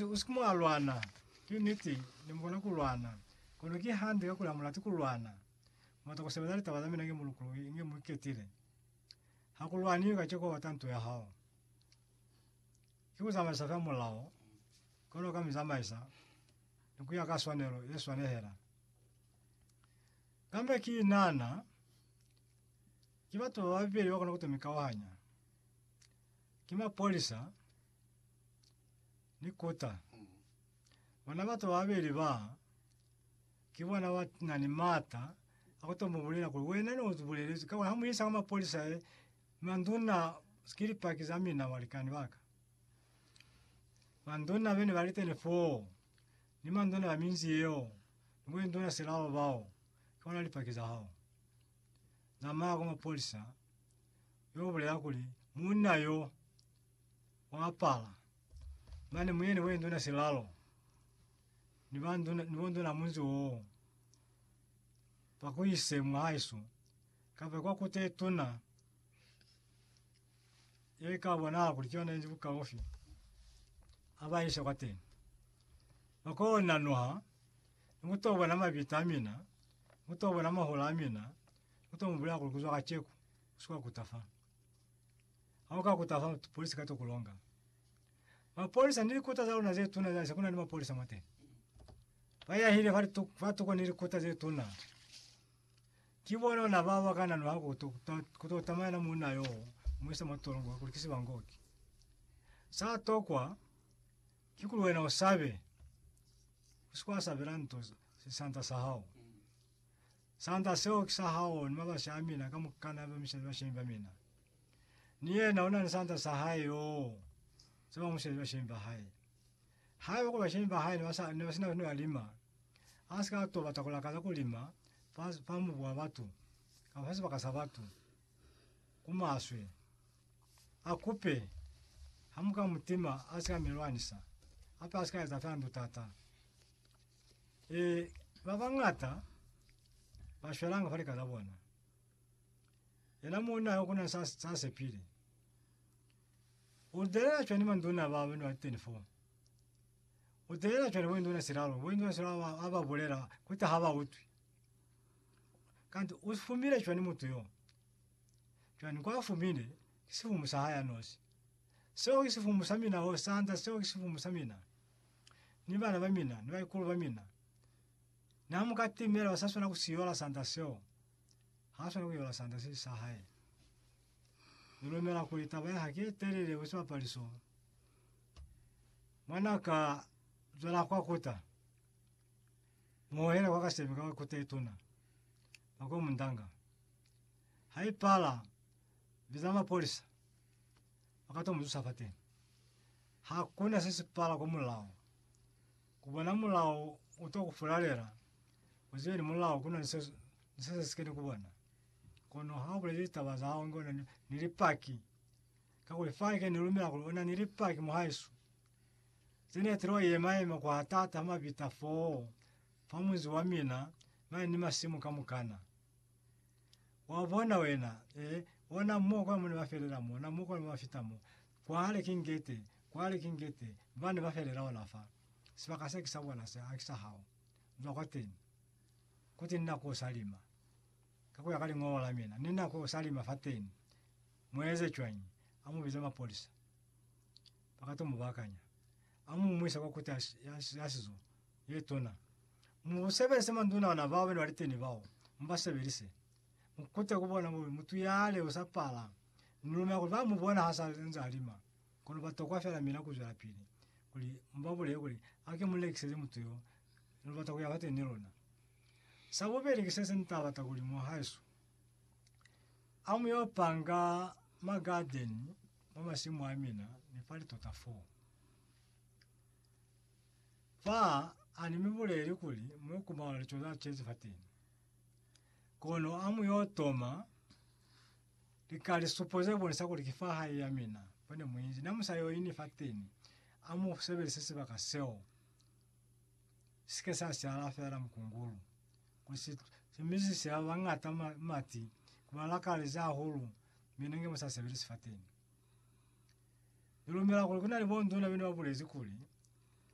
Usike mwa lwana. Ki niti, ne mukona ku lwana, kono ki hande kakuli amulati ku lwana. Muata ku sebeza litaba za mina inge mulukuluhi, inge muiketile. Ha ku lwaniwi kaceka ubata nto ya hao. Ki ku zamaisa fela mulao, kono ka mizamaisa, ni kuya ka swanelo ye swanehela. Kambe ki inana, ki batu bababeli bakona kuto mikauhanya. Ki mapolisa. ni kota. Bona batu bababeli ba, ki bona ba na ni maata a ku to mu bulela kuli, Wena ne u bulelezwi ka kuli ha mu isa kwa mapolisa he, manduna, ki Lipaki za mina, balikani ba ka. Manduna be ne ba li teni foo, ni manduna ba minzi yeo, ni bo induna silao bao, ki bona Lipaki za hao. Zamaya kwa mapolisa, yo bulela kuli, Munna yo, wa apala mane muyeni we nduna silalo ni ba nduna ni bonduna munzi woo pakuyise mwaisu kave kwa kute tuna ye ka bona kuli kyona inzi bukaufi abaise kwa tena akona nwa muto bona mabita amina muto bona mahola amina muto mubula kuzwa kacheku sio kutafa. Ha u ka kuta fa polisi ka to ku longa. Mapolisa ni likuta za luna ze tuna za se kuna ni mapolisa mwateni. Ba yahile fa litu, fa tuko ni likuta ze tuna. Ki bona ona ba ba kana nwa ku to ku to tamaya na muna yo mwisa mo tolongo ku likisi bangoki. Sa tokwa ki ku wena o sabe. Usikwa sabela nto se santa sa hao. Santa seo ki sa hao ni mabasi a mina ka mukana ba misha ba shemba mina. Ni yena una ni sanda sa hae yoo. Se ba mu shezi bashemi ba hae. Haiba ku bashemi ba hae ne ba sa ne ba sina ne ba lima, a si ka to bata ku lakaza ku lima fa fa mubu wa batu kapa fa sibaka sa batu. Ku maswe. A kupe, ha mu ka mu tima a si ka mi lwanisa. Hape a si ka eza fe handu tata. E, ba bangata ba shwelanga fa lika za bona. Yena muuna ha kuna sa sa sepile. O delela chwani manduna ba bana 24. O delela chwani bo nduna silalo, bo nduna silalo ba aba bolela kuta ha ba utwi. Kanti o fumile chwani mutu yo. Chwani kwa fumile si fumu sa haya nosi. Seo si fumu sa mina ho sanda seo si fumu sa mina. Ni bana ba mina, ni ba ikulu ba mina. Na muka timela sa sona ku siyola sanda seo. Ha swana ku yola sanda se si sa hae. Ni lumela kuli taba ya hae ki ye telele ku siba pali so. Mwan'a ka zwela kwa kuta. Mu hohela kwa kasemi ka kuta ye tuna. Ba ko mu ndanga. Ha i pala, biza mapolisa. Ba ka to mu zusa fateni. Ha kuna se si pala kwa mulao. Ku bona mulao u to ku fulalela, u zibe ni mulao ku na ni se, ni se se si keni ku bona. Kono ha u bulezi litaba za hao inge u na ni, ni Lipaki, kakuli fanike ni lumela kuli u na ni Lipaki, mohaesu, ze ne tilo yema yema kwa taata ha mabita foo, fa munzi wa mina, mane ni masimu kamukana. Wa bona wena, eh, bona mo kwa mone ba felela mo, na mo kwa ba fita mo. Kwa hale ki ngete, kwa hale ki ngete, ba ne ba felela ona fa. Sibaka se ki sa bona se, a ki sa hao. Zwa kwa teni. Kuti ni nako sa lima. Ka kuya ka liñolo la mina, ni nako sa lima fa teni. Mu eze cwañi? A mu bize mapolisa. Ba ka to mu bakanya. A mu mu ise kwa Kuti ya, ya, ya Sizo. Letona. Mu sebelise manduna ona bao bena liteni bao, mu ba sebelise. Mu kute ku bona bube mutu ya leo sa pala. Ni lumela kuli ba mu bona ha sa nze a lima, kono ba tokwa fela mina ku zwelapili, kuli mu ba bulele kuli, Hake mu lekiseze mutu yo, ni lubata ku ya fateni ni lona. Sa bubeli ki se se ni ta bata kuli mwa haesu a mu yo panga ma gadeni mwa masimu a mina, ni fa litota foo. Fa a ni mi buleli kuli mu yo kumana lico za cezi fateni, kono a mu yo toma lika lisupo ze bonisa kuli ki fa hae ya mina fa ne mu inzi. Na mu sa yo ini fateni, a mu sebelise sibaka seo si ke sa siala fela mukungulu, kuli si, si misise ba bañata ma, mati, ku ba lakalezi hahulu, mi ne nge mu sa sebelisi fateni. Ni lumela kuli ku na ni bonduna bene ba bulezi kuli,